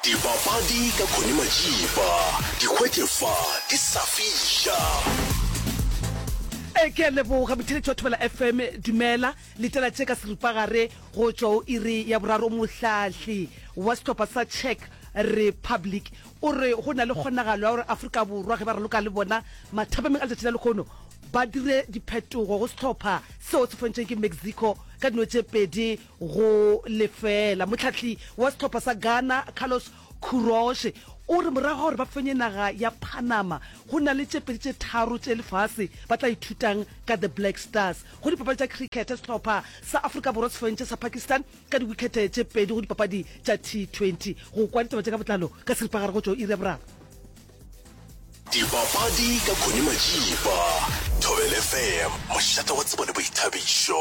Dibapadi ka Connie Majiba di hwetše fa di sa fiša. Ee, ke a leboga botheletši wa thobela fm dumela letela tše ka seripagare go tšwa o iri ya boraro mohlahli wa sehlopha sa czech republic o re go na le kgonagalo ya gore aforika borwa ge ba raloka le bona mathabameng a letšatši la lekgono ba dire diphetogo go sehlopha seo se fontšeng ke mexico ka dino tše pedi go lefeela. Mohlahli wa sehlopha sa Ghana, Carlos Queiroz, o re morago ga gore ba fenye naga ya Panama, go na le tše pedi tše tharo tše lefase ba tla ithutang ka The Black Stars. Go dipapadi tša cricket, sehlopha sa Afrika Borwa se fentše sa Pakistan ka diwikhete tše pedi go dipapadi tša T20. Go kwa ditaba tše ka botlalo ka seripagare go tšwa go iri ya boraro. Dipapadi ka Connie Majiba, Thobela FM, mošate wa tsebo le boithabišo.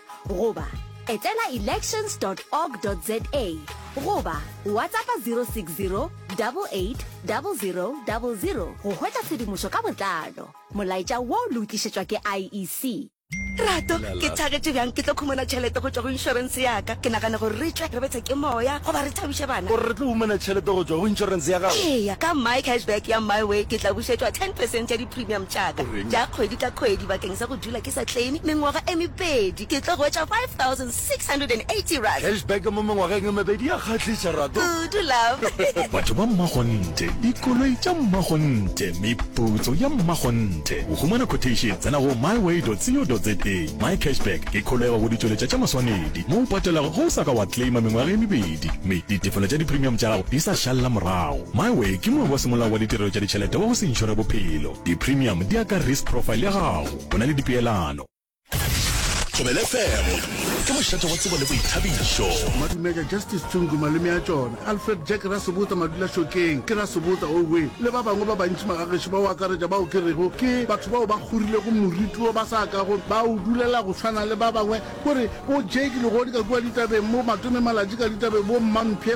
goba etela elections dot org dot za goba WhatsAppa 060 88 00 00 go hwetša tshedimošo ka botlalo. Molaetša wo le o tlišetšwa ke IEC. Rato, ke thagetše bjang ke tlo khumana tšhelete go tšwa go inšorense ya ka? Ke nagana gore re tle re bethe ke moya goba re thabiše bana. O re re tlo humana tšhelete go tšwa go inšorense ya gago? Eya, ka MyCashback ya MyWay ke tla bušetšwa ten percent ya di-premium tša ka tša kgwedi ka kgwedi bakeng sa go. dula ke sa claime mengwaga e mebedi ke tlo hwetša 5680 rand. Cash back mo mengwageng e mebedi ya kgahliša Rato. Kudu love. Batho ba mmakgonthe, dikoloi tša mmakgonthe, meputso ya mmakgonthe. Go humana quotation tsena go myway.co.za. My Cash Back ke kholego go ditšweletša tša maswanedi mo o patelago ge o sa ka wa claima mengwaga e mebedi mme ditefelo tša dipremium tša gago di sa šalela morago. My Way ke moe wa semolao wa ditirelo tša ditšhelete wa go se inšore bophelo. Di-premium di ya ka risk profile ya gago, bona le dipeelano. Thobela FM ke mošate wa tsebo le boithabišo. Madumeka, Justice Tsungu, malome a tšona, Alfred Jack Rasobotsa Madulašokeng, ke Rasobotsa Owe, le ba bangwe ba bantši magagešo ba go akaretša bao ke rego ke batho bao ba kgorilego moriti wo ba sa kago ba o dulela go swana le ba bangwe. Ko re, bo Jake Legodi ka kua ditabeng, bo Matome Malatji ka ditabeng, bo Mmampshe,